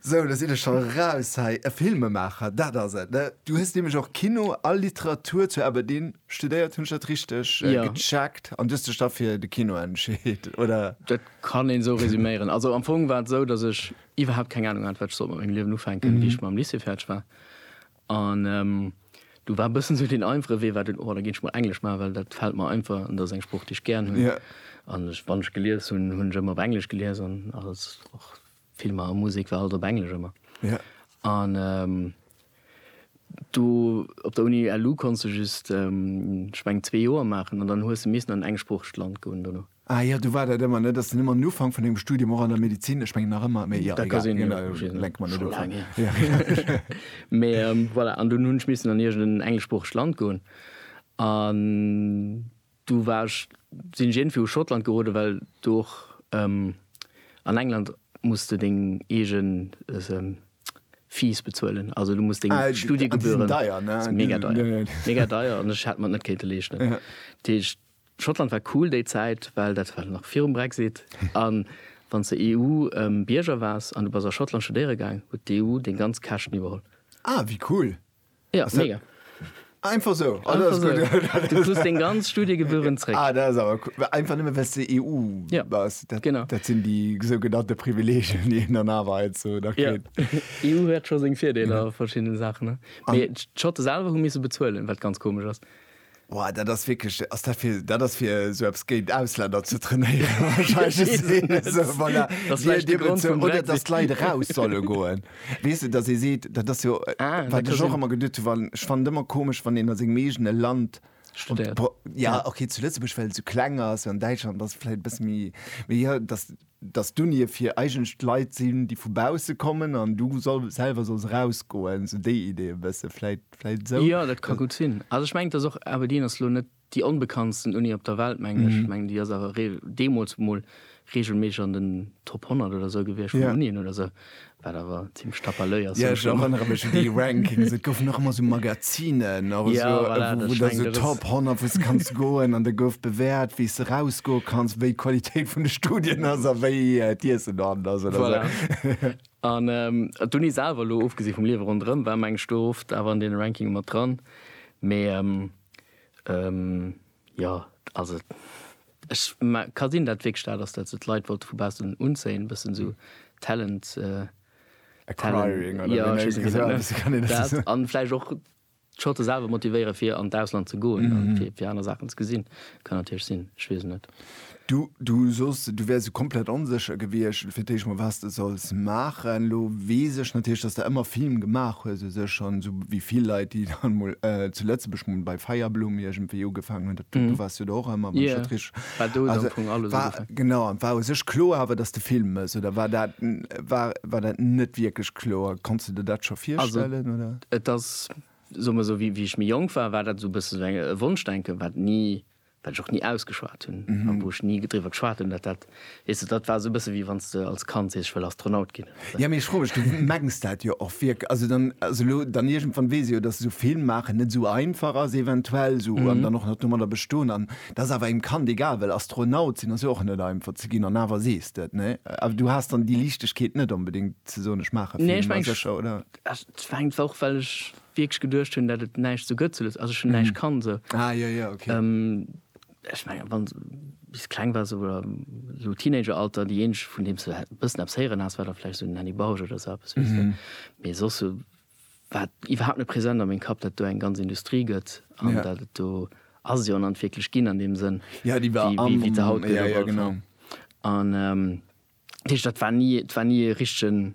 Sou, do sinn ech scho raus hei. E Filmemaacher, dat ass et, ne? Du hues nämlech och Kino a Literatur zu Aberdeen studéiert, hunn ech dat richteg gecheckt? An du hues dech da fir de Kino entscheet, oder? Dat kann een esou resuméieren. Also am Fong war et esou, datt ech iwwerhaapt keng Anung hat, wat ech sollt mat mengem Liewen ufänken, wéi ech mam Lycée fäerdeg war. An do war e bëssen esou deen einfache Wee war dunn, oh da ginn ech mol Englesch maachen, well dat fält mer einfach an dat ass eng Sprooch, déi ech gären hunn. An ech, wann ech gelies hunn, hunn ech ëmmer op Englesch gelies an alles, och Filmer a Musek war alles op Englesch ëmmer. An do op der Uni LU konns de just, ech mengen, zwee Joer maachen an dann hues de missen an en engsproochegt Land goen dono. Ah jo, du war dat ëmmer, ne? Dass den ëmmer den Ufank vun engem Studium och an der Medizin, ech mengen nach ëmmer, mee jo, egal, dat ka sinn, jo, ech weess net, scho laang hier. Mee voilà, an dunn hunn ech missen an iergend en engleschsproochegt Land goen an du war ech, sinn ech iergendwéi u Schottland geroden, well do och, an England muss de deng eege Fees bezuelen, also du muss deng Studiegebühren. Ah, déi sinn deier, ne? Mega deier, mega deier an ech hätt mer et net kéinte leeschten, dat heescht, Schottland war cool déi Zäit, well dat war nach virum Brexit. A wann s de EU-Bierger waars an du bass a Schottland studéiere gaang, huet d'EU deng ganz Käschten iwwerholl. Ah, wéi cool! Ja, mega. Einfach esou? Ah, dat ass gutt. Einfach esou. Du krus deng ganz Studiegebühren zréck. Ah, dat ass awer cool. Einfach nëmme well s de EU bass. Ja, genau. Dat sinn déi sougenannte Privileegien, déi een dann awer heiansdo nach kritt. Jo, EU huet scho seng Virdeeler a verschiddene Saachen, ne? Mee d'Schotte selwer hu misse bezuelen, wat ganz komesch ass. Boah, dat ass wierklech, ass dat fir, dat ass fir sou eppes géint Ausländer ze trainéieren wahrscheinlech. Et ass een, esou, voilà, Dat ass Dir, vläicht de Dir Grond bezou, vum oder dass Brexit. d'Leit eraus solle goen. Weess de, dass ee seet, dat ass jo, Ah, dat wat kann ech och sinn. ëmmer geduet hu wann, ech fannen et ëmmer komesch, wann een a sengem eegene Land Studiert. Pro- Ja, Ja. okay, zu Lëtzebuerg, well et sou kleng ass, an Däitschland ass et vläicht e bësse méi, mee jo, dass dass d'Unie fir eigentlech Leit sinn, déi vu bausse kommen an du selwer solls erausgoen, esou déi Idee e bësse vläicht, vläicht esou. Jo, dat ka gutt sinn. Also ech mengen, et ass och, Aberdeen ass elo net déi onbekanntsten Uni op der Welt, mengen ech. Ech mengen, déi ass awer deemools emol reegelméisseg an den Top 100 oder esou gewiescht vun Unien oder esou. Wat awer zimmlech tapalöi ass. Jo, ech erënnere mech un déi Rankings. Et goufen och ëmmer esou Magazinen oder esou, wou da esou Top 100, wou s de kanns goen an da gouf bewäert, wéi s de erausgoe kanns, wéi d'Qualitéit vun de Studien ass a wéi d'Iessen dorhannert ass oder esou. An d'Uni selwer, elo ofgesi vum Liewe ronderëm, war mengen ech do oft awer an deene Rankinge mat dran, mee. Jo, also ech ka sinn dat wierklech dat ass dat se d'Leit wollte vu baussen unzéien, e bëssen esou Talent Acquiring oder wéi nennt ee dat? An vläicht och d'Schotte selwer motivéiere fir an d'Ausland ze goen an fir aner Saachen ze gesinn. Kann natierlech sinn, ech weess et net. Du, du soss, du wäers sou komplett onsécher gewiescht fir d'éischt mol, wat s de solls maachen. Elo weess ech natierlech, dass s de ëmmer Film gemaach hues u sech, an sou wéi vill Leit, déi dann emol zu Lëtzebuerg mol bei Feierblumm iergendwéi ugefaangen hunn, dat, du waars jo do och ëmmer, wann ech dat richteg, also war, genau, war u sech kloer awer, dass s de Film méchs, oder war dat, war, war dat net wierklech kloer? Konns de dir dat scho virstellen, oder? Also et ass, soe mer sou, wéi ech méi jonk war, war dat sou e bësse sou e Wonschdenken, wat ni wat ech och ni ausgeschwat hunn a wou ech ni driwwer geschwat hunn, dat dat, weess de, dat war esou e bësse wéi wann s de als Kand sees, ech wëll Astronaut ginn. Jo, mee ech froe mech, du mengs dat jo och wierk-, also dann, also elo dann iergendwann weess ech jo, dass esou Film maachen net esou einfach ass eventuell esou an dann och nach domadder bestoen an et ass awer engem Kand egal, well Astronaut sinn ass jo och net einfach ze ginn an awer sees de et, nee? Awer du has dann déi Liichtegkeet net onbedéngt ze soen, ech maache Film, ma sécher, oder? Nee, ech mengen, et war och, well ech wierklech geduecht hunn dat et näischt sou gëtt zu Lëtz also ech hunn näischt kann sou Ah jo jo ok. Ech mengen wann s bis kleng wars oder sou Teenageralter déi eenzeg vun deem s de bëssen eppes héieren has war da vläicht sou den Henny Bausch oder sou eppes weess de mee soss sou war iwwerhaapt net present a meng Kapp dat do eng ganz Industrie gëtt an dat et do ass jo an an wierklech ginn an deem Sënn Ja déi war am wéi se haut gëtt op alle Fall an dat heescht dat war ni et war ni e richtegen.